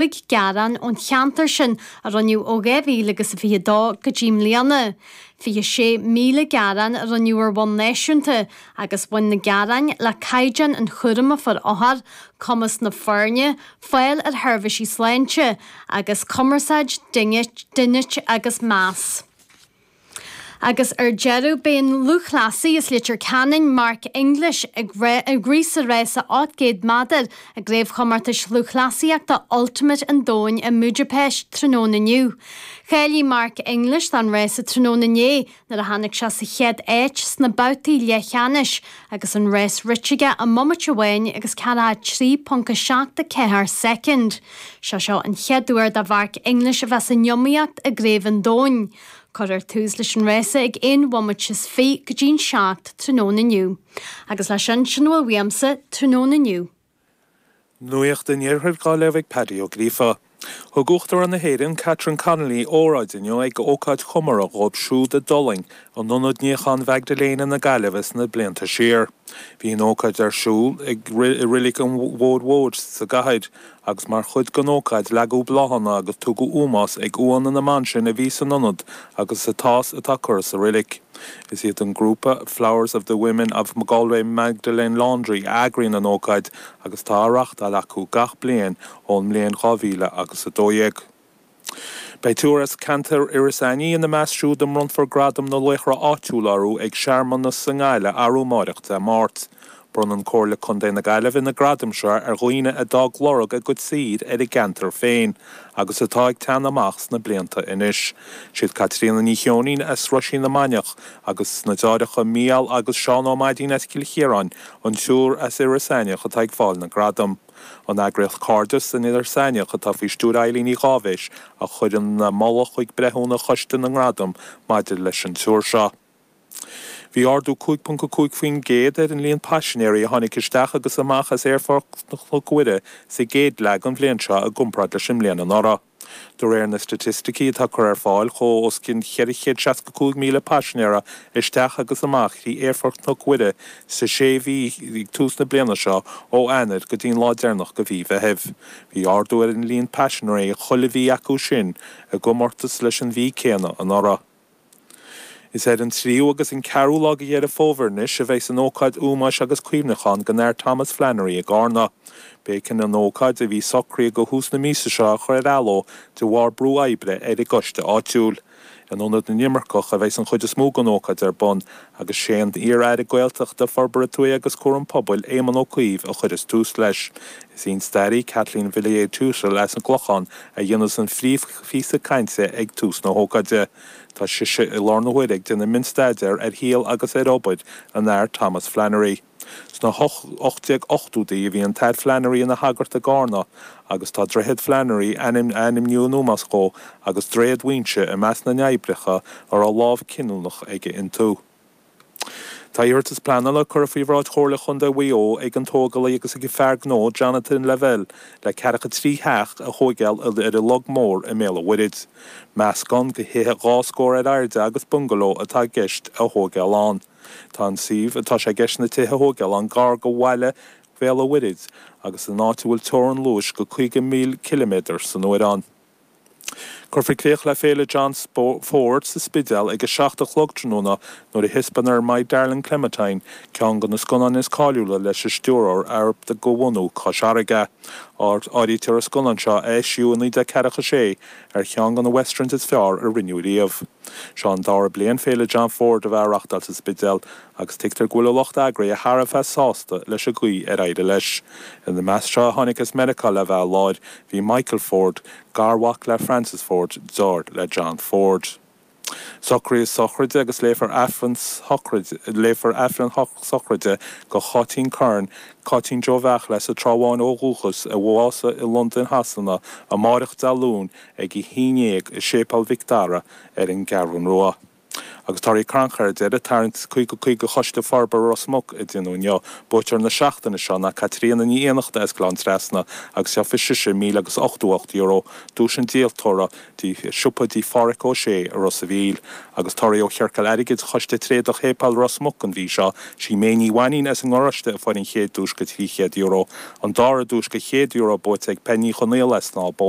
cúig gearán ón cheantar sin a rinneadh ó 2000 agus a fiche a dó go dtí mbliana. Fiche sé míle gearán a rinneadh ar bhonn náisiúnta agus bhain na gearáin le caighdeán an chúraim a fuair othair, cumas na foirne, fáil ar sheirbhísí sláinte agus cumarsáid, dínit agus meas. Agus ar deireadh, beidh an lúthchleasaí as Leitir Ceanainn, Mark English, ag rith sa rása 800 méadar i gCraobhchomórtais Lúthchleasaíochta Ultimate an Domhain i mBudapest tráthnóna inniu. Cháiligh Mark English don rása tráthnóna inné nuair a tháinig sé sa chéad áit sna babhtaí leathcheannais agus an rás rite aige i mbomaite amháin agus 43.74 soicind. Sé seo an chéad uair do Mhark English a bheith san iomaíocht i gCraobh an Domhain. Cuirfear tús leis an rása ag aon bhomaite is fiche go dtí'n seacht tráthnóna inniu. Agus leis sin, sin a bhfuil uaimse tráthnóna inniu. Nuaíocht an Iarthair dhá léamh ag Paddy Ó Gríofa. Thug Uachtarán na hÉireann, Catherine Connolly, óráid inniu ag ócáid chomóradh dhóibh siúd a d'fhulaing in Ionad Níocháin Mhaigdiléana na Gaillimhe sna blianta siar. Bhí an ócáid ar siúl i Reilig an Bhóthair Mhóir sa gcathair agus mar chuid den ócáid leagadh bláthanna agus tugadh ómós ag uaigheanna na mban sin a bhí san ionad agus atá is atá curtha sa reilig. Is iad an grúpa Flowers of the Women of Galway Magdalene Laundry a eagraíonn an ócáid agus atá á reáchtáil acu gach bliain ón mbliain 2000 agus 12. Beidh triúr as ceantar Iorras Aithnigh ina measc siúd a mbronnfar Gradam na Laochra Áitiúla orthu ag searmanas sa nGaillimh arú amáireach, Dé Máirt. Bronnann Comhairle Contae na Gaillimhe na gradaim seo ar dhaoine a d'fhág lorg a gcuid saothair ar a gceantar féin agus atá ag teannadh amach sna blianta anois. Siad Caitríona Ní Cheoinín as Roisín na Mainiach agus na deartháireacha Mícheál agus Seán Ó Maidín as Cill Chiaráin an triúr as Iorras Aithneach atá ag fáil na ngradam. An eagraíocht Cairdeas in Iorras Aithneach, atá faoi stiúir Eileen Uí Dháibhis, a chuir an moladh chuig breithiúna choiste na ngradam maidir leis an triúr seo. Bhí ardú 5.5% ar an líon paisinéirí a tháinig isteach agus amach as Aerfort Chnoc Mhuire sa gcéad leath den bhliain seo i gcomparáid leis an mbliain anuraidh. De réir na staitisticí atá curtha ar fáil chuaigh os cionn 465,000 paisinéara isteach agus amach thrí Aerfort Chnoc Mhuire sa sé mhí ag tús na bliana seo ó Eanair go dtí'n lá deireanach de mhí Mheithimh. Bhí ardú ar an líon paisinéirí chuile mhí acu sin i gcomórtas leis an mhí céanna anuraidh. Is ar an tríú agus an ceathrú lá de Dheireadh Fómhair anois a bheas an ócáid ómóis agus cuimhneacháin don Athair Thomas Flannery i gCarna. B'éigean an ócáid a bhí socraithe do thús na míosa seo a chur ar athló de bharr brú oibre ar an gcoiste áitiúil. In Ionad na nImirceach a bheas an chuid is mó den ócáid ar bun agus sé an t-iar-aire Gaeltachta, Forbartha Tuaithe agus Cúram Pobail, Éamon Ó Cuív, a chuireas tús leis. Is í an stairí, Kathleen Villiers-Tuthill as an gClochán, a dhéanas an phríomhphíosa cainte ag tús na hócáide. Tá sise i láthair na huaire ag déanamh mionstaidéar ar shaol agus ar obair an Athar Thomas Flannery. Sna 1880idí bhí an tAthair Flannery ina shagart i gCarna agus tá Droichead Flannery a ainmníodh in ómós dhó agus Droichead Mhaínse i measc na n-oibreacha a raibh lámh chinniúnach aige iontu. Tá iarratas pleanála curtha faoi bhráid Chomhairle Chontae Mhaigh Eo ag an tógálaí agus ag an fear gnó Jonathan Lavelle le ceathracha trí theach a thóigeáil ar an Log Mór i mBéal an Mhuirthead. Meascán de thithe dhá stór ar airde agus bungaló atá i gceist a thóigeáil ann. Tá an suíomh atá sé i gceist na tithe a thógáil ann gar go bhaile Bhéal a' Mhuirthid agus in áit a bhfuil teorann luais go 50 míle ciliméadar san uair ann. Cuirfear críoch le Féile John Ford sa Spidéal ag a seacht a chlog tráthnóna nuair a thispeánfar My Darling Clementine, ceann de na scannáin is cáiliúla leis an stiúrthóir arb de bhunadh Chois Fharraige. Áirítear an scannán seo, a eisíodh i 1946, ar cheann de na Westerns is fearr a rinneadh riamh. Seo an dara bliain Féile John Ford a bheith á reachtáil sa Spidéal agus tuigtear go bhfuil a lucht eagraithe thar a bheith sásta leis an gcaoi ar éirigh leis. Ina measc seo a tháinig as Meiriceá le bheith i láthair bhí Michael Ford, garmhac le Francis Ford, deartháir le John Ford. Socruithe sochraide agus léifear a léifear Aifreann sochraide do Cháitín Curran, Cáitín Joe Mhaidhcil as an Trá Bháin ó dhúchas, a bhásaigh i Londain Shasana amárach Dé Luain, ag a haon dhéag i Séipéal Mhic Dara ar an gCeathrún Rua, agus torthaí crannchuir ar deireadh, tarraingt caoga caoga Choiste Forbartha Ros Muc a déanadh inniu. Buaiteoir na seachtaine seo ná Caitríona Ní Fhiannachta as Gleann Trasna agus gheobhaidh sise míle agus ochtó a hocht euro duais an díoltóra do shiopa Tí Pháraic Ó Sé i Ros a' Mhíl agus torthaí ó Chiorcal Airgid Choiste Tréadach Shéipéal Ros Muc an mhí seo sí May Ní Mhainín as an nGaráiste a fuair an chéad duais go trí chéad euro. An dara duais go chéad euro buaite ag Penny Ní Chonaola as Snámh Bó.